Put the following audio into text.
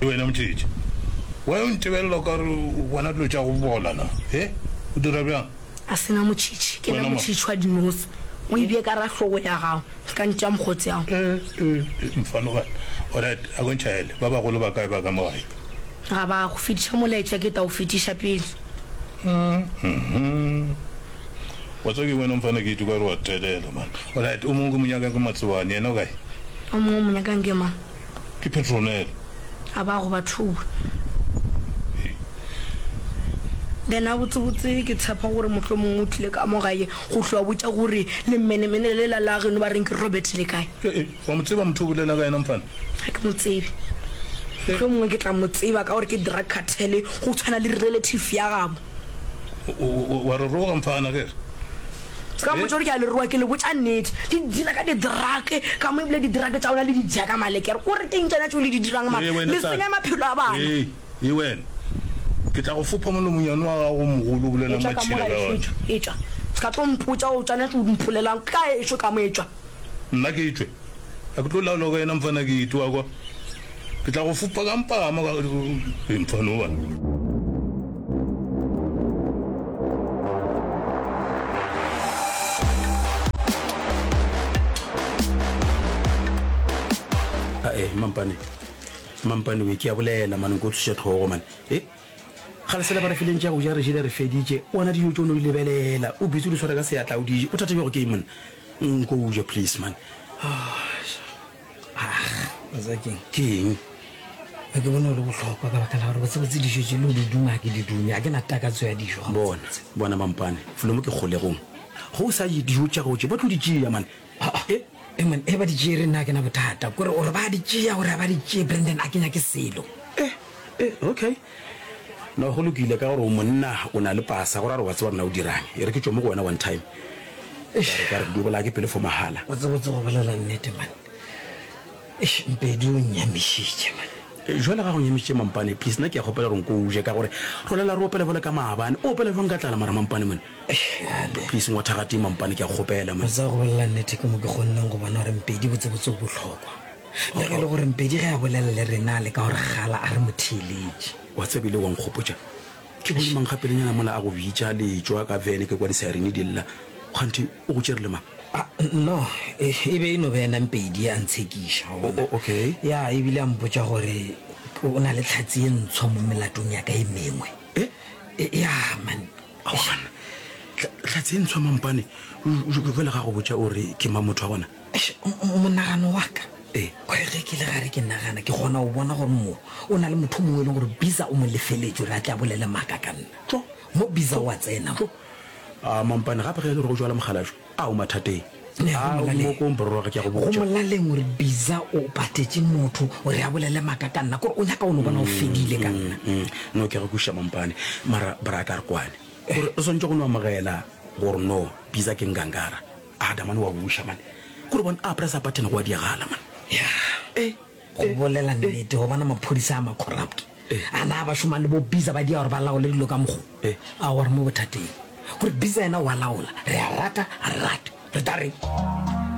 Ke wena Mothetši. Why o ntebelela okare o bona dilo tša go bola na? He? O dira bjang? A se na Motšhitšhi. Ke na Motšhitšhi wa dinose. O e bee ka ra hlogo ya gago. Ke ka ntša mokgotse ao. E, e, e, mfanogana. Orait, a ko ntšhaele. Ba bagolo ba kae ba ka mo gae? Ga ba go. Fetiša molaetša ke ta o fetiša pele. Uhmm. Wa tseba ke wena mfana ke ituka re wa telela man. Alright o mongwe ke mo nyakang ke Matsobane yena o kae? O mongwe o mo nyakang ke mang? Ke Petronella. A ba go ba thuba. Then a botse botse ke tshepa gore mohlomongwe o tlile ka mo gae go hlwa botša gore le mmenemene le la la geno ba reng ke Robert le kae? Ee eh, eh, wa mo tseba motho o bolela ka yena mfana? Ga ke mo tsebe. Mohlomongwe ke tla mo tseba ka gore ke drug cartel go tshwana le relative ya gabo. wa re roga mfana ke re ka eh? motho ke a leroa ke le botša nnete di dira ka didrake ka mo ebile didrake tša ona le dija ka malekere o re keng tsona tšeo le di dirang ma le senya maphelo a bana e wena ke tla go fopha molomonyane wa gago mogolo o bolela matšhila ka ona etswa se ka tlo mpotša o tswana tse o mpholelang ka ešo ka mo etswa nna ke etswe a ke tlo laolwa ka yena mfana ke itewa kwa Ke tla go fupa ka mpagamo ka mfano wa. Ae, eh, mampane. Mampane we ke a bolela mane go tshusha tlhogo mane. Eh? Ga le sela ba re fileng tša go ja re jile re feditše. O ana dijo tšo no di lebelela. O bitse o di tshwara ka seatla o di je. O thategego ke monna. Nko o je please man. Ah. Bazakeng ke eng ga ke bone gore botlhokwa ka baka la gore botsebotse dijo tse le o di duma ke di dume a ke na takatso ya dijo bona bona mampane felo mo ke kgolegong go o sa je dijo tša gago tše ba tlo di tšea mane e mane e ba di tšee re nna ke na bothata kore gore ba di tšea gore ba di tšee brandon a kenya ke selo e okay No, go lokile, ka gore o monna, o na le pasa, go ra gore wa tseba rena o dirang. E re ke tšwe mo go wena one time, eish, e ka re di o bolaya ke pelo fo mahala. O tsebotse go bolela nnete, man. Eish, Mpedi o nnyamišitše, man. Jwale ga go nyamišitše, Mampane, please, nna ke a kgopela gore nko o je, ka gore re lela re opela bjalo ka maabane. O opela bjang ka tlala, mara, Mampane, man? Eish, bjale. Please, ngwa thagatee, Mampane, ke a kgopela, man. O tseba go bolela nnete, ke mo ke kgonnego go bona gore Mpedi botsebotse o bohlokwa. Le ge e le gore Mpedi ge a bolela le rena le ka gore gala a re mo theeletše. Wa tseba ile wa nkgopotša ke bone mang ga pelenyana mola a go bitša le tšwa ka vene ke kwa disairini di lla. Kganthe o go tšere le mang? A, no, e, e be e no beyena Mpedi a ntshekiša, wa bona. O, okay. Ya, e bile a mpotša gore o na le tlhatse ye ntshwa mo melatong ya ka e mengwe. E? E, ya, man. Aowa banna, Tlhatse e ntshwa mampane? Jwale ga go botša o re ke mang motho wa gona? Eish, m-m monagano wa ka Ee. o re ge ke le gare ke nagana ke kgona go bona gore mo o na le motho o mongwe e leng gore Biza o mo lefeletše gore a tle a bolele maaka ka nna. Tjo. Mo Biza o a tsena mo. Aa mampane gape ge e le gore go jwala mogalajo a o mathateng. Ne, go Aa o molaleng. moko o mpororoge ke a go Go botša. molaleng o re Biza o patetše motho gore a bolele maaka ka nna kore o nyaka o no bona o fedile ka nna. Mm, mm, no ke a go kwešiša mampane mara brata re kwane gore re swantše go no amogela gore no Biza ke ngangara. a da mane wa buša mane gore bone a pressa button go a diagala mane eh go bolela nnete go bona maphodisa a macorrupt a na ba šoma le bo biza ba dia gore ba laole dilo ka mogo a gore mo bothateng gore biza yena wa laola re a rata a re rate re ta reng